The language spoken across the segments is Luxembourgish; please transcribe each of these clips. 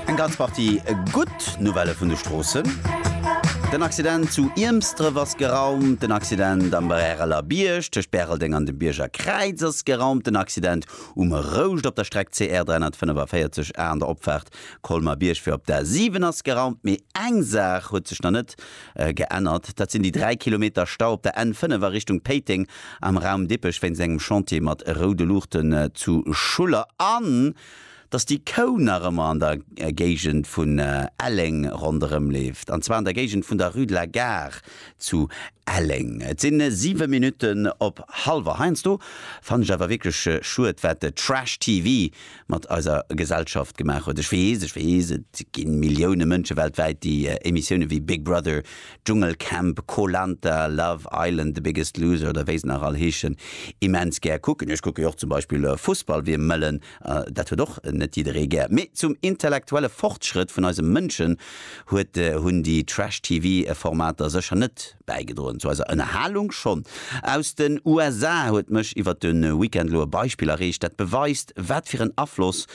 Eng ganz Partie gutt Nouvellë vun de Stroossen. Den Accident zu Iermsdref ass geraumt. Den Accident am Bräreler Bierg tëscht Bäreldeng an dem Bierger Kräiz ass geraumt. Den Accident um Rouscht op der Streck CR 345 A an der Opfaart Colmer-Bierg fir op d'A 7 ass geraumt. Mee eng Saach huet sech nach net geännert. Dat sinn déi 3 Kilometer Stau op der N 5 a Richtung Péiteng am Raum Dippech wéinst engem Chantier mat roude Luuchten zu Schuller. An dass déi Kou nach ëmmer an der Géigend vun Elleng ronderëm leeft, an zwar an der Géigend vun der Rue de la Gare zu Elleng. Et si 7 Minutten op halwer. Heiansdo fannen ech awer wierklech schued, wat de Trash-TV mat eiser Gesellschaft gemaach huet. Ech weess, ech weess, et gi Millioune Mënsche weltwäit, déi Emissiounen wéi Big Brother, Dschungelcamp, Koh-Lanta, Love Island, The Biggest Loser oder wéi se nach all heeschen, immens gär kucken. Ech kucke jo och zum Beispill Fussball, wéi e mëllen Dat huet och net jidderee gär. Mee zum intellektuelle Fortschrëtt vun eise Mënschen huet hunn déi Trash-TV Formater sécher net bäigedroen. Zu eiser Ënnerhalung schonn. Aus den USA huet mech iwwert de Weekend elo e Beispill erreecht, dat beweist, wat fir en Afloss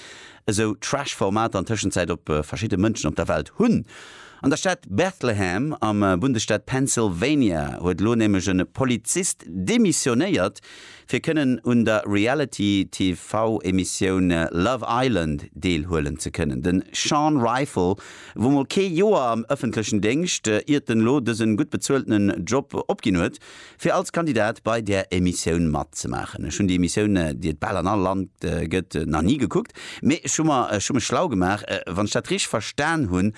esou Trash Formater an Tëschenzäit op verschidde Mënschen op der Welt hunn. An der Stad Bethlehem am Bundesstaat Pennsylvania huet elo nämlech e Polizist demissionéiert, fir kënnen un der Reality-TV-Emissioun Love Island deelhuelen ze kënnen. De Sean Ryfle wor mol kee Joer am ëffentlechen Déngscht, iert en elo dësen gutt bezueltenen Job opginn huet, fir als Kandidat bei där Emissioun matzemaachen. Ech hunn déi Emissioun, déi et bal an all Land gëtt, nach ni gekuckt, mee ech hu mech schlau gemaach. Wann ech dat richteg verstan hunn,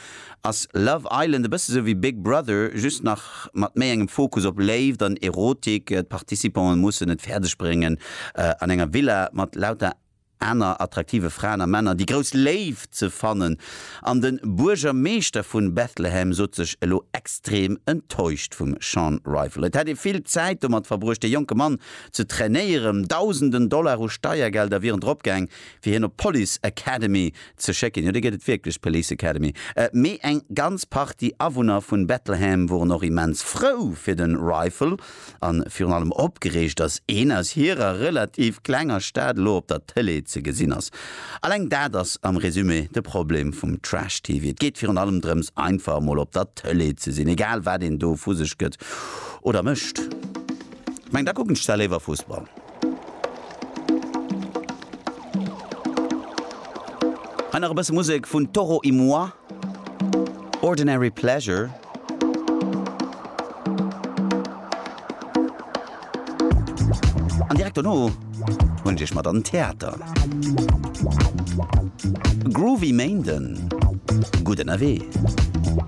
Ass Love Island e bësse sou wéi Big Brother, just nach mat méi engem Fokus op Léift an Erotik? D'Participanten mussen et fäerdeg bréngen, an enger Villa mat lauter aner attraktive Fraen a Männer déi grouss Léift ze fannen. An de Buergermeeschter vu Bethlehem sot sech elo extrem enttäuscht vum Sean Rival. Et hätt ee vill Zäit domat verbruecht, de jonke Mann ze trainéieren. Dausenden Dollar u Steiergelder wieren dropgaang, fir hien op d'Police Academy ze schécken, jo, déi gëtt et wierklech, d'Police Academy, mee eng ganz Partie Awunner vun Bettelham woren och immens frou fir den Ryfle an virun allem opgereegt, dass een aus hierer relativ klenger Stad elo op der Tele ze gesinn ass. Alleng dat ass am Résumé de Problem vum Trash TV, et geet virun allem drëms einfach mol op der Tele ze sinn, egal wat een do vu sech gëtt oder mécht. Ech mengen, da kucken ech zwar léiwer Fussball. Hei nach e bësse Musek vun Toro y Moi, Ordinary Pleasure. An direkt dono huelen ech iech mat an den Theater. Groovy Méinden, gutt ënnerwee!